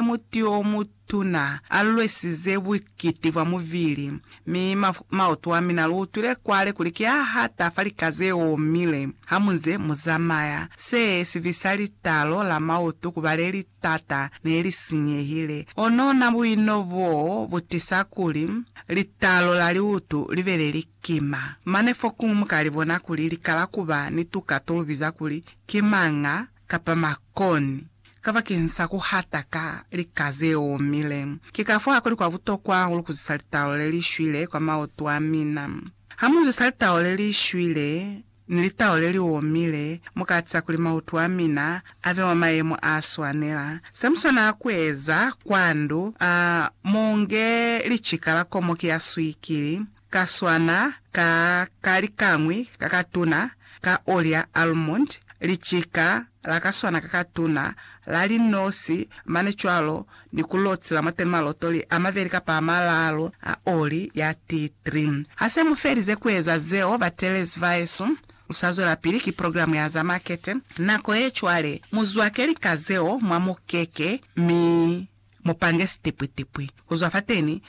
Mwa muti o mutuna, a lwesize bukiti bwa mubili, mi maoto a mina lu utwile kwale kuli ki a hata fa lika ze omile. Ha mu nze mu zamaya, se si fisa litalo la maoto ku ba le li t'ata, ne li sinyehile. Onona buino boo bu tisa kuli litalo la liutu li be le li kima. Mane fokuñwi mu ka li bona kuli li kala ku ba ni tuka to lu biza kuli ki manga kapa makoni, kabakeni sa ku hata ka lika ze omile. Ki ka fo ha kuli kwa butokwa hahulu ku zwisa litalo le li shwile kwa maoto a mina. Ha mu zwisa litalo le li shwile ni litalo le li omile, mu ka atiza kuli maoto a mina a be mwa mayemo a swanela. Se mu swanela ku eza, kwa ndu, a mu nge licika la komoki ya swikili, Ka swana ka ka likañwi ka katuna ka oli ya almond, licika la ka swana ka katuna la linosi mane cwalo ni ku lotila mwa te malotoli a mabeli kapa a malalu a oli ya tea tree. Ha se mu felize ku eza zeo, batelezi ba yesu, lu sa zwelapili ki progilamu ya za makete. Nako ye cwale, mu zwake lika zeo mwa mukeke, mi Mu pange sitipwitipwi ku zwa fateni,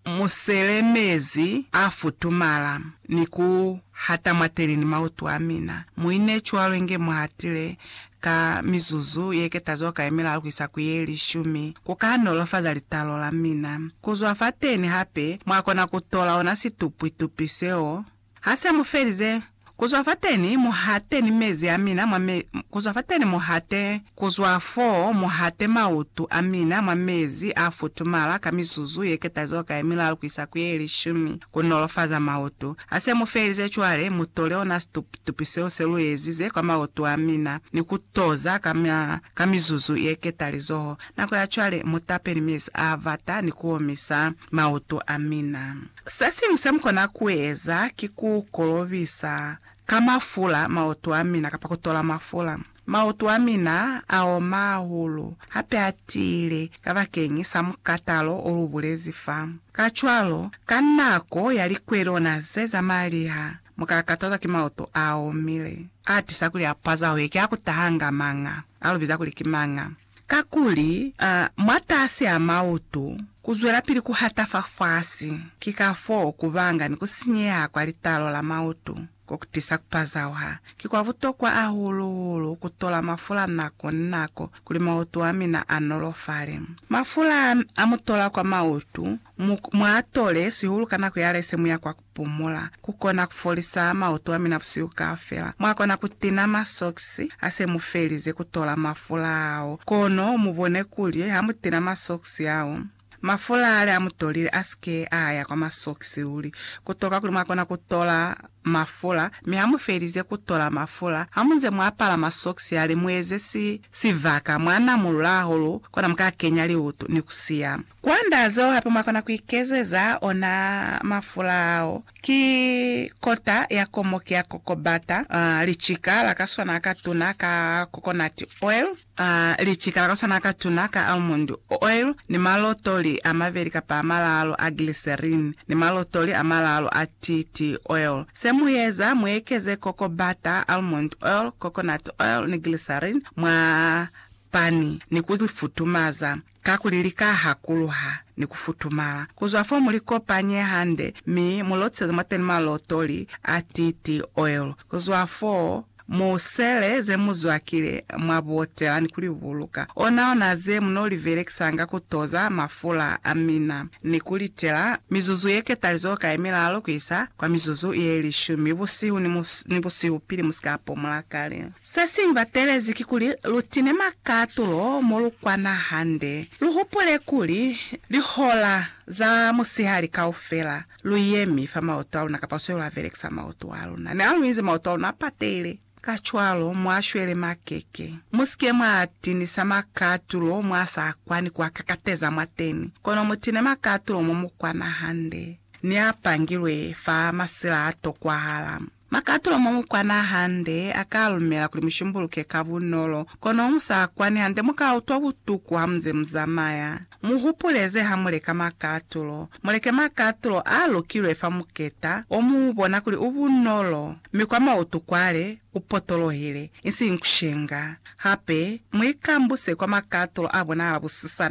muselemezi a futumala ni ku hata mwateni ni mautu a mina. Mu ine cwalo inge mu hatile ka mizuzu ye ketazo kai milalu ku isa ku ye lishumi, ku ka nolofaza litalo la mina. Ku zwa fateni hape, mwa kona ku tola ona situpwitupwi seo. Ha se mu felize, ku zwa fateni mu hate ni mezi a mina mwa me, ku zwa fateni mu hate, ku zwa foo mu hate mautu a mina mwa mezi a futumala ka mizuzu ye ketazoka ye milalu ku isa ku ye lishumi, ku nolofaza mautu. Ha se mu felize cwale, mu tole ona situp, tupi seo se lu ezize kwa mautu a mina, ni ku toza ka, ka mizuzu ye ketalizoho. Nako ya cwale, mu tape ni mezi a bata ni ku omisa mautu a mina. Sesiñwi semukona kueza ki ku kolobisa ka mafula maoto amina kapa kutola mafula. Maoto amina aoma hahulu hape atiile kabakeñi sa mukatalo olubulezi fa. Kacwalo, ka nako ya likwelona ze zamaliha, muka katazwa ki maoto aomile. Atisa kuli apaza hoike akutahanga mañ'a, alubiza kuli ki mañ'a. Kakuli, a, mwatasi a mautu, kuzwelapili kuhata fafasi, ki kafoo kubanga ni kusinyeha kwa litalo la mautu, kokutisa kupazauha. Ki kwa butokwa hahulu-hulu kutola mafula nako ni nako kuli mautu amina anolofale. Mafula amutola kwa mautu, mu, muatole, sihulu ka nako yalese muya kwa, pumula. Ku kona ku folisa mautu a mina busihu kaufela. Mwa kona ku tina masokisi ha se mu felize ku tola mafula ao. Kono mu bone kuli ha mu tina masokisi ao, mafula ale a mu tolile a si ke a ya kwa masokisi luli. Ku tokwa kuli mwa kona ku tola mafula, mi ha mu felize ku tola mafula, ha mu nze mu apala masokisi ale, mu eze si, sibaka mwa na mu lula hahulu, kona mu ka kenya liutu ni ku siya. Kwand'a zeo hape mwa kona kuikezeza ona mafula ao. Ki kota ya komoki ya kokobata, licika la ka swana ka tuna ka coconut oil, licika la ka swana ka tuna ka almond oil, ni malotoli a mabeli kapa a malaalu a glycerine, ni malotoli a malaalu a TT oil. Se mu eza, mu ekeze kokobata, almond oil, coconut oil ni glycerine mwa pani ni ku li futumaza. Kakuli lika ha kuluha ni ku futumala ku zwa fo, mu li kopanye hande mi mu lotseze mwateni malotoli a titi, oil, ku zwa foo, mu sele ze mu zwakile mwa botela ni ku li buluka, onaona ze mu no li belekisanga ku toza mafula a mina, ni ku li tela mizuzu ye ketalizo ka ye milalu ku isa kwa mizuzu ye lishumi busihu ni busihu pili mu si ka pomula kale. Se si lubatelezi kikuli lutine makatulo mo lukwana hande. Luhupule kuli, lihola za musihali kaufela luyemi fa maoto aluna kapa sweli lavelekisa maoto aluna. Ne aluinzi maoto aluna apatele. Kacwalo, mwashwele makeke. Musike mwaatinisa makatulo mwaasa kwani kuakakateza mwateni, kono mutine makatulo mo mukwana hande, neapangilwe fa masila atokwahala. Makatulo mo mu kwana hande a ka lumela kuli mu shimbuluke ka bunolo, kono mu sa kwani hande mu ka utwa butuku ha mu nze mu zamaya. Mu hupule ze ha mu leka makatulo. Mu leke makatulo a lukilwe fa muketa o mu bona kuli u bunolo, mi kwa mautu kwale u potolohile, isiñi ku shenga. Hape, mu ikambuse kwa makatulo a bonahala busisa